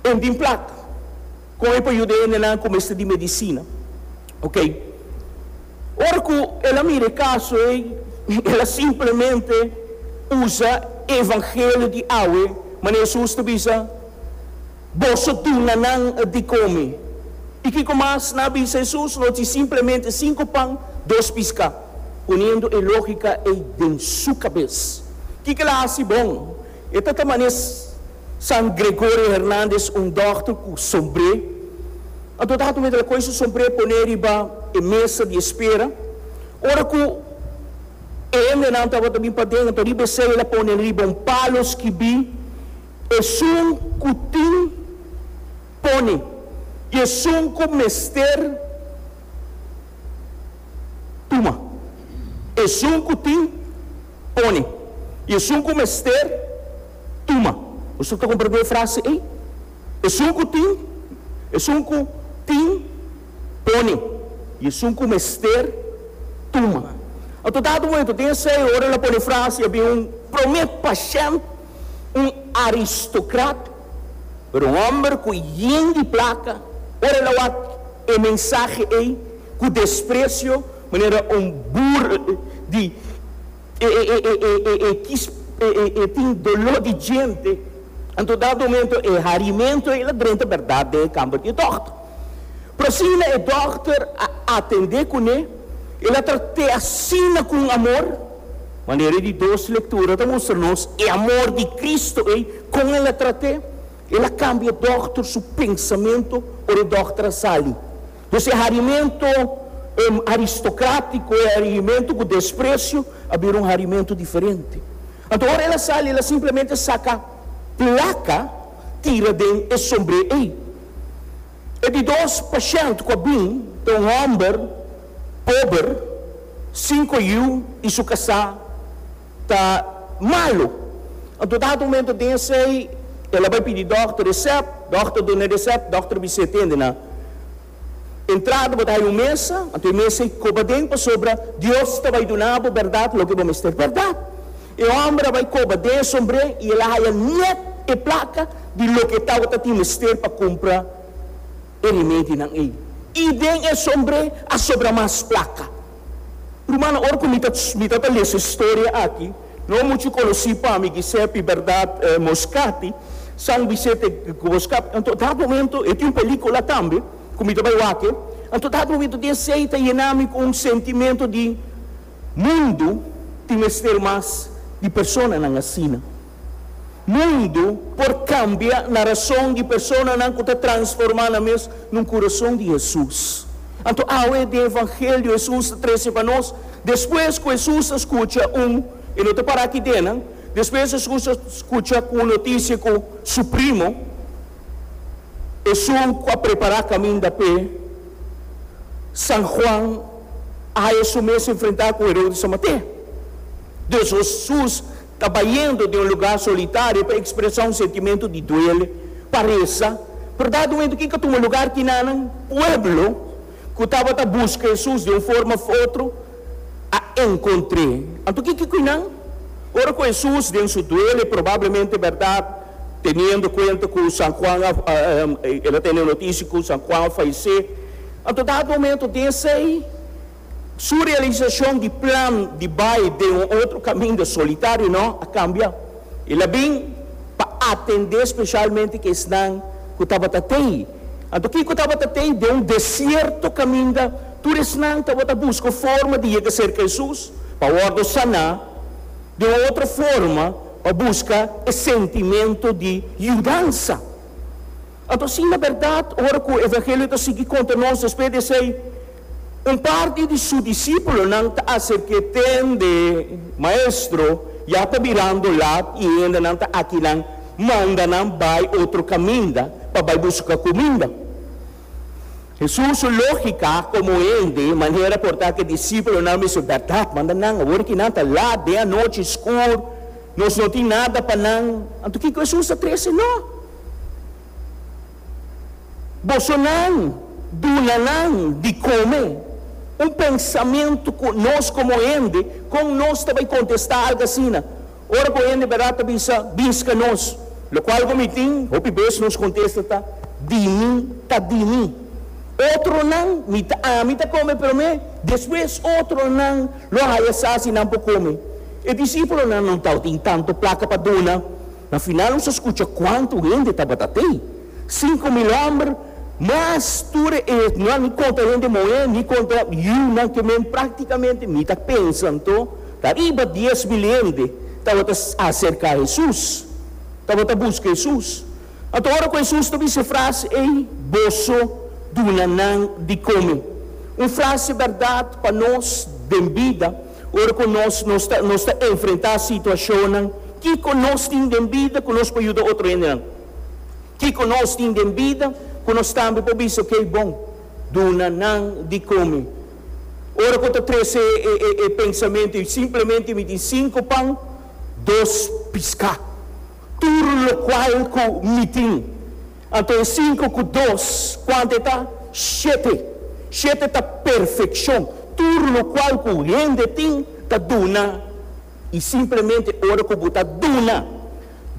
E tin plat. Con e por yuda e hendenan cu mester di medicina. Ok. Ora cu el a mira e caso ey, el a simplemente usa e evangelio di awe, manera Jesús ta bisa, Boso duna nan di come. Y kico mas nan a bisa Jesús nos di simplemente cinco pan, dos pisca? Poniendo e logica ey den su cabes, kico el a haci bon? E ta ta manes. San Gregorio Hernandez, un dòkter ku sombré. Anto tabatin ku mester a koge su sombré pon'é riba e mesa di espera. Ora ku e hendenan tabata bin paden, anto riba esei el a pone riba un palo skibí, Esun ku tin pone i esun ku mester tuma. Esun ku tin pone i esun ku mester. Tuma. Boso ta comprende e frase ey? Esun cu tin, esun cu tin, pone, y esun cu mester, tuma. Anto dado un momento den esey ora el a pone e frase y a bin un prome pashent, un aristocrat, pero un homber cu yen di placa, ora el a wak e mensahe ey cu desprecio manera un burl di. E, e, e, e, e, e, e kis, e, e, e tin doló di djente, anto dado momento e harimento ei la drenta bèrdat den e kamber di e dòkter. Pero asina e dòkter a atendé kuné, el a trat'é asina ku un amor. Manera di dos lektura ta mustra nos e amor di Kristu ei, kon el a trat'é? El a kambia e dòkter su pensamentu ora e dòkter a sali. Pues e harimentu aristokratiko, e harimentu ku despresio a bira un harimentu diferente. Anto ora el a sali, el a simplemente saka plaka tira den e sombré ei. E di dos pashènt ku a bin ta un hòmber pober, sinku yiu i su kasá ta malu. Anto dado momento den esey el a bai pidi dokter resèp, dokter duna e resèp, dokter bis'é e tende na entrada bo ta haña un mesa, anto e mesa ei koba den pasobra Dios ta bai duna bo bèrdat loke bo mester bèrdat. E hòmber a bai koba den e sombré i el a haña nèt e plaka di loke tabata tin mester pa kumpra e rimedinan ei. I den e sombre a sobra mas plaka. Rumannan, ora ku mi ta mi ta ta lesa e storia aki, no muchu konosí pa mi Giuseppe Bernard Moscati, San Vicente Moscati. Anto dat momento, e tin un pelíkula tambe ku mi ta bai wak-e, anto dat momento dinsei ta yená mi ku un sentimento di mundu tin mester mas di personanan asina. Mundu por kambia na rason di personanan ku ta transformá nan mes n'un kurason di Hesus. Anto awe den evangelio Hesus ta trese pa nos, despues ku Hesus a skucha un, e no ta para aki den nan, despues Hesus a skucha ku un notisia ku su primo, esun ku a prepará kaminda p'e, San Juan, a haya su mes enfrentá ku Herodes a mat'é. Hesus. Ta bayendo den un lugá solitario pa ekspresá un sentimentu di duele, pa resa. Bèrdat un hentu ke ka tuma lugar kinanan? Pueblo ku tabata buska Hesus di un forma òf otro a enkontr'é. Anto ke ki kui nan? Ora ku Hesus den su duele, probablemente bèrdat, teniendo kuenta ku San Juan a el a tene notisia ku San Juan a fayesé, anto dat momentu den esei, Su realisacion di plan di bai den un otro caminda solitario no a cambia. El a bin pa atende specialmente ki esnan cu tabata tey. Anto kico tabata tey? Den un desierto caminda, tur esnan tabata busca forma di yega cerca Hesus pa wordo sana, den un otro forma pa busca e sentimento di yudansa. Anto asina berdad ora cu Evangelio ta sigui conta nos despues di esey, Un parti di su disipolonan ta aserk'é tende, Maestro, ya ta birando lat i hendenan ta akinan. Manda nan bai otro kaminda pa bai buska kuminda. Hesus su lógika komo hende manera por ta ku e disipolonan mester bèrdat manda nan. Awor ku nan ta lat den anochi, skur, nos no tin nada pa nan. Anto kiko Hesus ta trese nan? Bosonan duna nan di come. Un pensamentu cu nos como hende, con nos ta bay contesta algo asina? Ora cu hende berdad ta bisa, Binsca nos. Locual cu mi tin, hopi bes nos contesta ta, Di mi, ta di mi. Otronan, mi ta, ami ta come prome, despues otronan lo haya sa si nan por come. E discipulonan no tabata tin tanto placa pa duna. Na final nos a scucha cuantu hende tabata t'ey, cinco mil homber, mas tur e no a ni conta hende moe, ni conta yiunan ke men practicamente mi ta pensa anto ta riba dies mil hende tabata acerca Hesus, tabata busca Hesus. Anto ora cu Hesus ta bisa e frase ey, Boso duna nan di come, un frase berdad pa nos den bida, Ora cu nos nos ta nos ta enfrenta situacionnan, kico nos tin den bida cu nos por yuda otro hendenan? Kico nos tin den bida cu nos tambe por bisa, ok, bon, duna nan di come? Ora cu ta trece e e e pensamento, y simplemente mi tin cinco pan, dos pisca. Tur locual cu mi tin. Anto e cinco cu dos, cuanto e ta? Shete. Shete ta perfeccion. Tur locual cu hende tin ta duna. Y simplemente ora cu bo ta duna,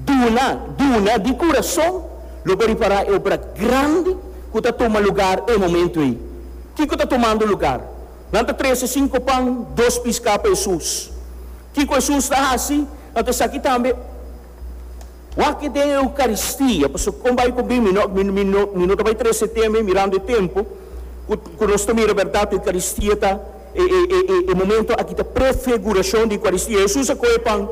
duna, duna di curazon, lo bo ripara e obra grandi cu ta tuma lugar e momento ey. Kico ta tumando lugar? Nan ta trece cinco pan, dos pisca pa Hesus. Kiko Hesus ta hasi? Anto esaki tambe wak den e Eukaristia. Pasobra kon bai ku bimi? No, mi no ta bai trese teme mirando e tempu ku nos ta mira bèrdat. Eukaristia ta e momentu aki ta prefigurashon di Eukaristia. Hesus a kohe e pan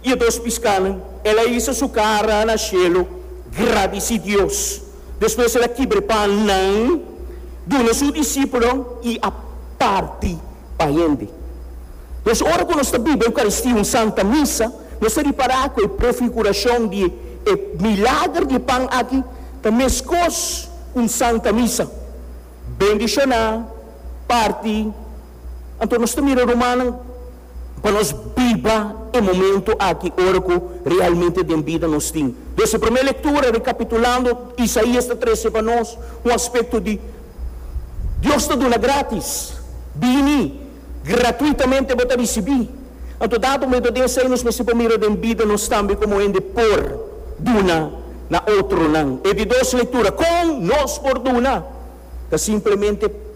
i e dos piskanan, el a hisa su kara na shelu, gradisi Dios, Despues el a kibra e pannan, duna su disipelon i a parti pa hende. Nos, ora ku nos ta biba Eukaristia, un Santa Misa, nos ta ripará ku e prefigurashon di e milager di e pan aki ta meskos ku un Santa Misa, bendishoná, parti. Anto nos ta mira rumannan. pa nos biba e momento aki ora ku realmente den bida nos tin. Des e promé lektura, rekapitulando, Isaías ta trese pa nos un aspekto di Dios ta duna grátis. Bini, gratuitamente bo ta risibí. Anto dado momento den esei nos mester por mira den bida nos tambe komo hende por duna na otronan. E di dos lektura, kon nos por duna, ta simplemente.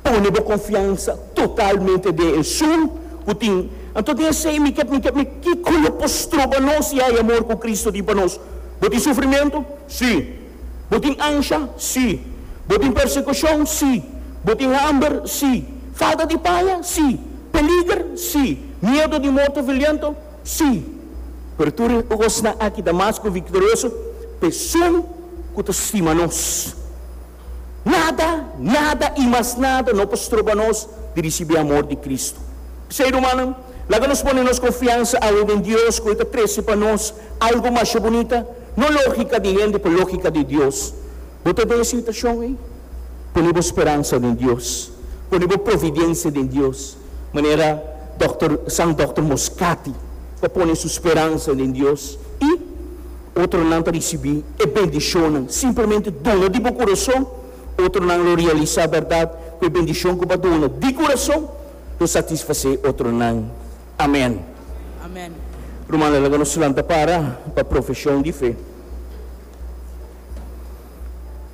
Pone bo konfiansa totalmente den Esun ku tin. Anto den esei mi ke, mi ke, mi kiko lo por stroba nos i haya amor ku Kristu tin pa nos? Bo tin sufrimentu? Sí. Bo tin ansha? Sí. Bo tin persekushon? Sí. Bo tin hamber? Sí. Falta di paya? Sí. Peliger? Sí. Miedu di morto violento? Sí. Pero tur e kosnan aki ta mas ku viktorioso pa Esun ku ta stima nos. Nada, nada i mas nada no por stroba nos di risibí amor di Kristu. P'esei, rumannan, laga nos pone nos konfiansa awe den Dios ku E ta trese pa nos algu masha bunita, no lógika di hende, pero lógika di Dios. Bo ta den e situashon ei? Pone bo speransa den Dios. Pone bo providensia den Dios, manera dòkter, San Dòkter Moskati ta pone su speransa den Dios i. Otronan ta risibí e bendishonnan simplemente duna di bo kurason. Otronan lo realisá bèrdat ku e bendishon ku bo a duna di kurason lo satisfasé otronan. Amèn. Rumannan, laga nos lanta para pa profeshon di fe.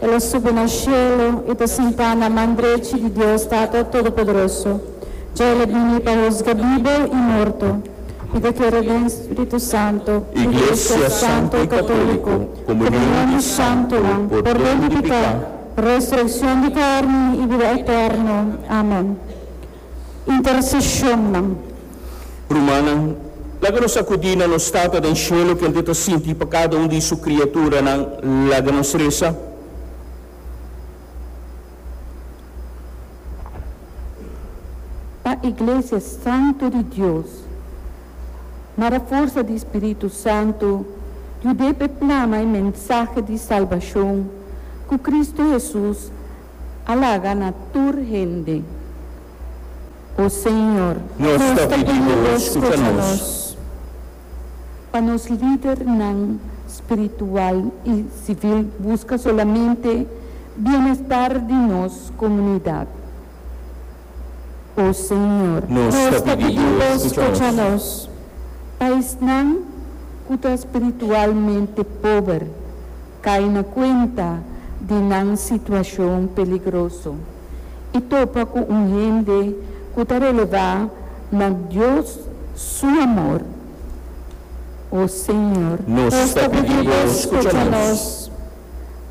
El a subi na shelu i ta sintá na man drechi di Dios Tata Todopoderoso. Dja el a bini pa husga bibu i morto. Mi ta kere den spritu santu, iglesia santu i katóliku, komunion di santunan, pordon di piká, resurekshon di karni i bida eterno. Amen. intercesiónnan. Rumannan, laga nos akudí na nos Tata den Shelu kel di ta sinti pa kada un di Su kriaturanan. Laga nos resa. Pa Iglesia santu di Dios, na da forsa di Spiritu Santu, yud'é p'e plama e mensahe di salbashon ku Kristu Hesus, a laga na tur hende, O Señor. Nos ta pidi Bo, skucha nos. Pa nos lidernan spiritual i sivil buska solamente bienestar di nos komunidat, O Señor. Nos ta pidi Bo, skucha nos. Pa esnan ku ta spiritualmente pober. kai na kuenta di nan situashon peligroso i topa ku un hende ku ta relevá na Dios su amor. O Señor. Nos ta pidi Bo skucha nos.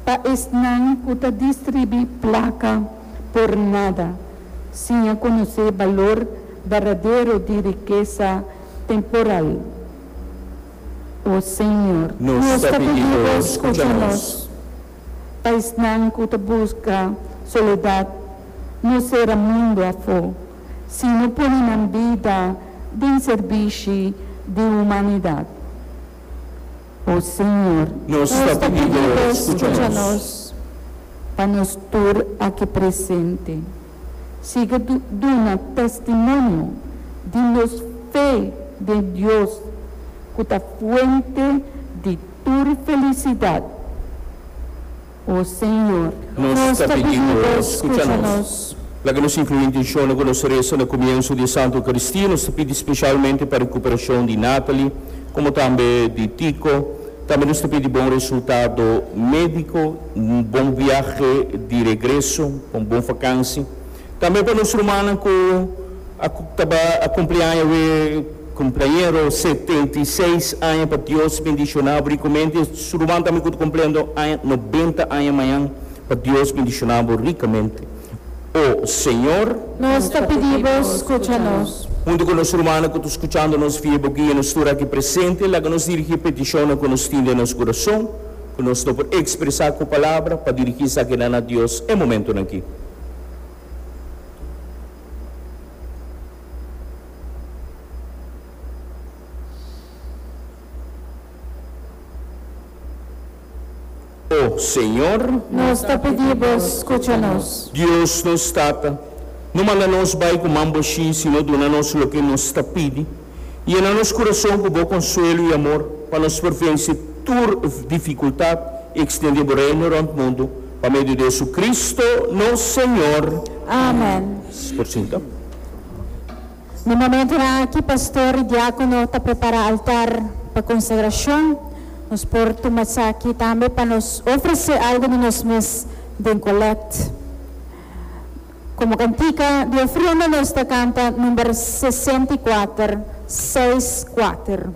Pa esnan ku ta distribui plaka por nada, siña konosé balor bardadero di rikesa temporal, O Señor, nos ta pidi Bo scucha nos. Pa esnan cu ta busca soledad, no cera mundo afo, sino pone nan bida den servishi di humanidad. O Señor, nos ta pidi Bo scucha nos. Pa nos tur aki presente. Sigue duna testimonio di nos fe den Dios cu ta fuente di tur felicidad, o Señor. Nos ta pidi bo, scucha nos. Laga nos inclui intencion cu nos reza na cumienso di e Santa Eucaristia. Nos ta pidi specialmente pa recuperacion di Natalie, como tambe di Tico. Tambe nos ta pidi bon resultado medico. Un bon viahe di regreso, pa un bon vakansi. Tambe pa nos rumannan ku a ta bai a kumpli aña we kumpleañero setenta i seis aña pa Dios bendishoná bo rikomente. Estos ruman tambe ku ta kumpliendo aña nobenta aña mañan pa Dios bendishoná bo rikamente. O Señor. Nos ta pidi bo skucha nos. Huntu ku nos rumannan ku ta skuchando nos via bo guia nos tur aki presente laga nos dirigí petishonnan ku nos tin den nos kurason. ku nos no por ekspresá ku palabra pa dirigí esakinan na Dios e momentunan akí. O Señor! Nos ta pidi Bo skucha nos. Dios nos Tata, no manda nos bai ku man boshí, sino duna nos loke nos ta pidi. Yena nos kurason ku bo konsuelo i amor, pa nos por vense tur difikultat i ekstendé bo Reino rònt mundu, pa medio di Hesukristu nos Señor. Amen. Por sinta. Na momentunan aki pastor i diákono ta prepará altar pa konsagrashon. Nos por tuma esaki tambe pa nos ofresé algu di nos mes den kolèkt. Komo kantika di ofrenda nos ta kanta number sesenta i kuater, seis kuater.